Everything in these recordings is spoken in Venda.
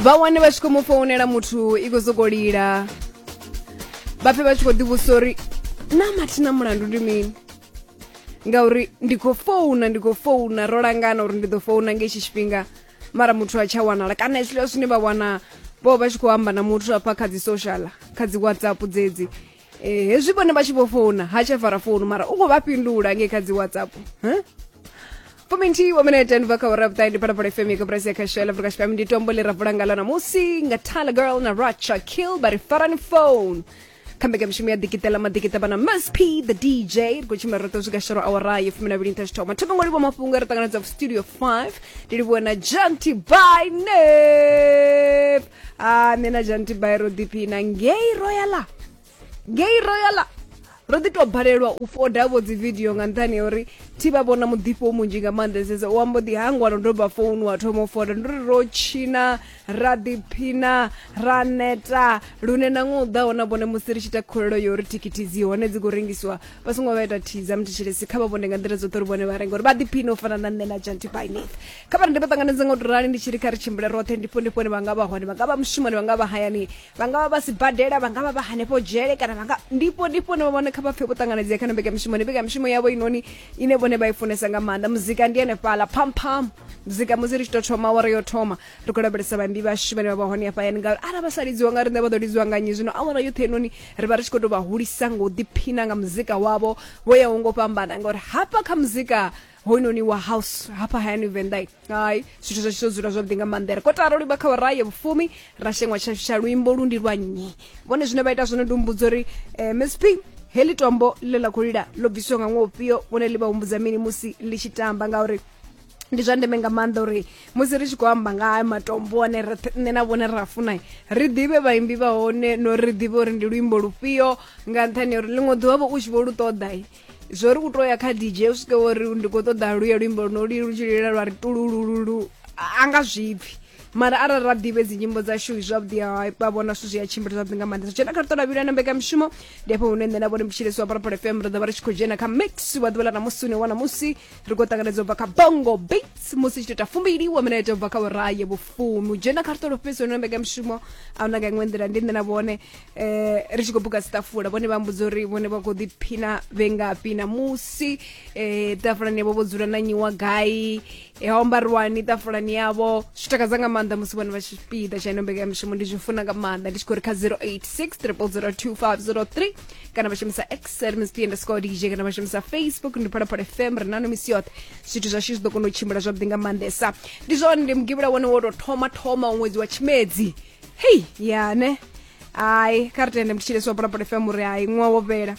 vha wane vha tshi khou mu founela muthu i khou sokou lila vha pfe vha tshi khou ḓivhusa uri na mathina mulandu ndi mini ngauri ndi khou founa ndi khou founa ro langana uri ndi ḓo founa nga itshi tshifhinga mara muthu a tsha wanala kana hezwiḽiwa zwine vha wana vho vha tshi khou amba na muthu afha kha dzi social kha dzi whatsapp dzedzi Eh, hezwi vhone vha tshi vho founa ha tsha fara founu mara u khou vha fhindula ngei kha dzi whatsapp huh? fuminthihi wa minete ni bva kha ura vhuṱahe ndi phalaphala fm ya kaburasi ya khasho ya afrika tshipembe ndi tombo ḽi ra vula ngalo namusi nga tala girl na racha kill vha ri farani phone kha mbekanyamushumo ya dikitela madikita vhana msp the dj ri khou tshimbila roṱo swika shoro awara yo fumi na vhili nṱha tshithoma thoma ngo livhuwa mafhungo a ri ṱanganedza studio 5 ndi livhuwa na janty by nep a ah, nṋe na jantibai ro ḓiphina ngei royala ngei royala ro ḓi tou balelwa u foda vho dzi video nga nṱhani ya uri thi vha vhona muḓifho munzhi nga maanḓesesa u ambo ḓi hangwa no doba founu wa thoma u foda ndi uri ro tshina ra ḓiphina ra neta lune na ṅwe u ḓaho na vhone musi ri tshi ita khulelo yo uri thikhithi dzi hone dzi khou rengisiwa vha songo vha ita thiza muthetshelesi kha vha vhone nga nḓila dzoṱhe uri vhone vha renga uri vha ḓiphine u fana na nṋe na jantibainith kha vha rende vha ṱanganedze nga u rali ndi tshi ri kha ri tshimbile roṱhe ndifho ndifhoni vha nga vha hone vha nga vha mushumoni vha nga vha hayani vha nga vha vha sibadela vha nga vha vha hanefho dzhele kana vha nga ndifho ndifhoni vha vhone kha vha pfe vho ṱanganedzea kha no mbekamishumoni mbekamishumoni yavho inoni ine vhone vha i funesa nga maanḓa muzika ndi henefhala phampham muzika musi ri tshi tou thoma awara yo thoma ri khou lavhelesa vhaimbi vhashu vhane vha vha hone hafhayani ngauri ara vha sa lidziwa nga riṋe vha ḓo lidziwa nga nnyi zwino awara yoṱhe inoni ri vha ri tshi khou tou vha hulisa nga u ḓiphina nga muzika wavho vho yaho ngo fhambana ngauri hafha kha muzika hoyunoni wa house hafha hayani venḓai hai zwithu zwashu zwo dzula zwavhuḓi nga maanḓa ri kho tara livha kha waraye vhufumi ra sheṅwa tshashu tsha luimbo lu ndi lwa nnyi vhone zwine vha ita zwone ndi humbudzo uri eh, msp heḽi tombo ḽe ḽa khou lila ḽo bvisiwa nga ṅwaha ufhio vhone ḽi vha humbudza mini musi ḽi tshi tamba ngauri ndi zwa ndeme nga maanḓa uri musi ri tshi khou amba nga haya matombo ane roṱhe nṋe na vhone ra funa ri ḓivhe vhaimbi vha hone no ri ḓivhe uri ndi luimbo lufhio nga nṱhani ya uri ḽiṅwe ḓuvha vho u tshi vho lu ṱoḓa zwo ri u to ya kha dj u swike wo ri ndi khou ṱoḓa luye luimbo luno lu lu tshi lilela lwa ri tululululu a nga zwipfi mara arali ra ḓivhe dzi nyimbo dzashu zwavhuḓi ha vha vhona zwithu zwi a tshimbila zwavhuḓi nga maanḓa dzhena kha ṱola vhila na mbekamishumo ndi afho hune nṋe na vhone mutshilisi wa parapara fm ri ḓo vha ri tshi khou dzhena kha mix wa ḓuvha ḽa namusi une wana musi ri khou ṱanganedza u bva kha bongo beats musi tshi tou ita fumbili wa mina ita u bva kha uraye vhufumi u dzhena kha ṱola fhedzi hone na mbekamishumo a huna nga iṅwe nḓila ndi nṋe na vhone eh ri tshi khou buka sitafula vhone vha mbudza uri vhone vha khou ḓiphina vhe ngafhi na musi eh tafulani yavho vho dzula na nyiwa gai eh ha ombariwani tafulani yavho zwi takadza nga maanḓa musi vhone vha tshi piḓa tsha ino mbekanyamushumo ndi zwi funa nga maanḓa ndi tshi khou ri kha 0863002503 kana vha shumisa xl msp underscore dj kana vha shumisa facebook ndi phalaphala fm ri nano misi yoṱhe zwithu zwashu zwi ḓo kona u tshimbila zwavhuḓi nga maanḓesa ndi zwone ndi mugivhula wone wo tou thoma thoma ṅwedzi wa tshimedzi hei ya ne hai kha ri tende mutshile so pulapula fm uri hai ṅwa wo fhela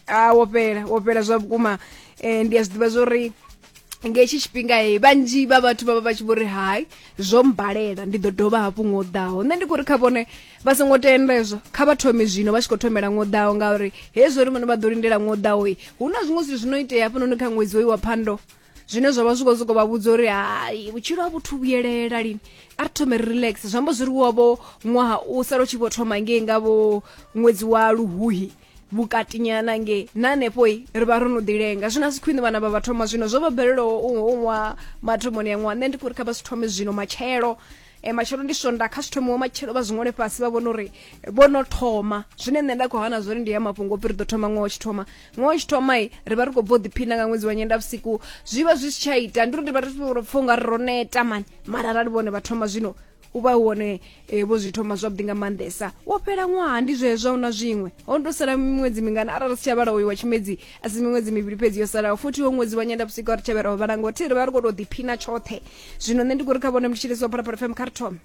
a wo fhela wo fhela zwa vhukuma um ndi a zwi ḓivha zwa uri nga hetshi tshifhinga he vhanzhi vha vhathu vha vha vha tshi vho ri hai zwo mbalela ndi ḓo dovha hafhu ngo ḓaho nṋe ndi khou ri kha vhone vha songo tenda hezwo kha vha thome zwino vha tshi khou thomela ngo ḓaho ngauri hezwo ri vhone vha ḓo lindela ngo ḓaho hu na zwiṅwe zwithu zwi no itea hafhanoni kha ṅwedzi hoyu wa phando zwine zwa vha zwi khou sokou vha vhudza uri hai vhutshilo ha vhuthu vhuyelela lini a ri thome ri relax zwi amba zwi ri wovho ṅwaha u sala u tshi vho thoma ngei nga vho ṅwedzi wa luhuhi vhukatinyana ngei na hanefho ri vha ro no ḓilenga zwino a si khwine vhana vha vha thoma zwino zwo vha bvelelaho u ṅwaha mathomoni ya ṅwaha nṋe ndi khou ri kha vha si thome zwino matshelo e matshelo ndi swonda kha zwithu muwe matshelo vha zwiṅwale fhasi vha vhona uri vho no thoma zwine nṋe nda khou hana zwori ndi ya mafhungo ri ḓo thoma ṅwaha tshi thoma ṅwaha tshi thoma i ri vha ri khou bva u ḓiphina nga ṅwedzi wa nyenda vhusiku zwi vha zwi si tsha ita ndi uri ndi vha ri pfa unga ri ro neta mani mara arali vhone vha thoma zwino u vha wone e, vho zwi thoma zwavhuḓi nga maanḓesa wo fhela ṅwaha ndi zwezwo na zwiṅwe ho ndo sala miṅwedzi mingana arali si tsha vhala uyu wa tshimedzi a si miṅwedzi mivhili fhedzi yo salaho futhi wo ṅwedzi wa nyenda vhusiku a ri tshavhera ho vhala ngo thi ri vha ri khou tou ḓiphina tshoṱhe zwino nṋe ndi khou ri kha vhone mutshilisi wa phalaphala fm kha ri thome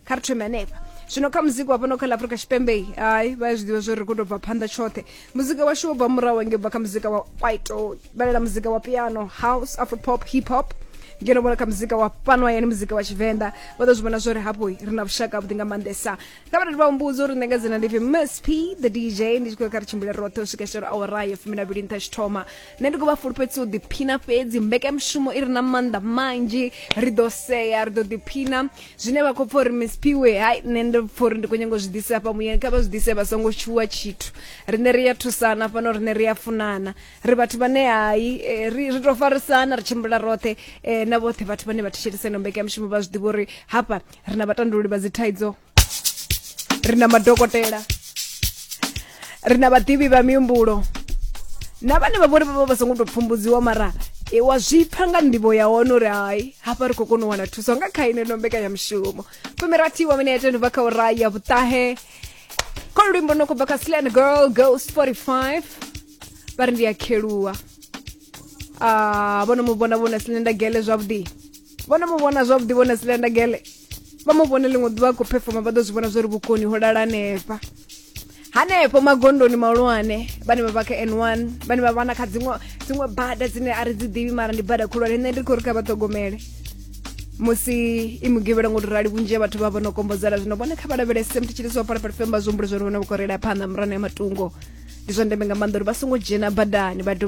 kha ri thome hanefha zwino kha muzika wa fhano kha la afrika tshipembe hai vha ya zwi ḓivha zwo ri khou tou bva phanḓa tshoṱhe muzika washu wo bva murahu hange bva kha muzika wa kwaito vhalela muzika wa piano house afropop hip hop ngeno vhona kha muzika wa fhano hayani muzika wa tshivenḓa vha ḓo zwi vhona zwori hafho ri na vhushaka vhuḓi nga maanḓesa kabati vambudzo uri ndinga dzina ndivi msp the dj ndi tshi khou ya kha ri tshimbile roṱhe u swika shero awara ya fumi na vhili nṱha tshi thoma nṋe ndi khou vha fulufhedzisa u ḓiphina fhedzi mbekanyamushumo i re na maanḓa manzhi ri ḓo sea ri ḓo ḓiphina zwine vha khou pfa uri msp we hai nṋe ndi pfa uri ndi khou nyanga u zwi ḓise hafha muyeni kha vha zwi ḓise vha songo tshuwa tshithu riṋe ri a thusana fhano riṋe ri a funana ri vhathu vhane hai eh, ri ri tou farisana ri tshimbila roṱhe eh, na vhoṱhe vhathu vhane vha thetshelesa ino mbekanyamushumo vha zwi ḓivha uri hafha ri na vhatandululi vha dzithaidzo ri na madokotela ri na vhaḓivhi vha mihumbulo na vhane vha vhori vha vha vha songo tou pfumbudziwa mara e, wa zwi pfa nga nḓivho ya hone uri hai hafha ri khou kona u wana thuso nga kha ine no mbekanyamushumo fumirathi wa minete ni bva kha ura ya vhuṱahe kho luimbo no khou bva kha slan girl ghost 45 vha ri ndi a kheluwa Ah, vhono mu vhona vhona silenda gele zwavhuḓi vho no mu vhona zwavhuḓi vhone silenda gele vha mu vhone ḽiṅwe ḓuvha a khou phefoma vha ḓo zwi vhona zwo ri vhukoni ho lala hanefha hanefho magondoni mahulwane vhane vha vha kha n one vhane vha vhana kha dziṅwe dziṅwe bada dzine a ri dzi ḓivhi mara ndi bada khulwane nṋe ndi khou ri kha vha ṱhogomele musi i mugivhela ngo tou rali vhunzhi ha vhathu vha vha no kombodzela zwino vhone kha vha lavhelese mthi tshilisi wa phalaphala femba zwi humbule zwa ri vhone vha khou reila phanḓa murano ya matungo ndi zwa ndeme nga maanḓa uri vha songo dzhena badani vha dovha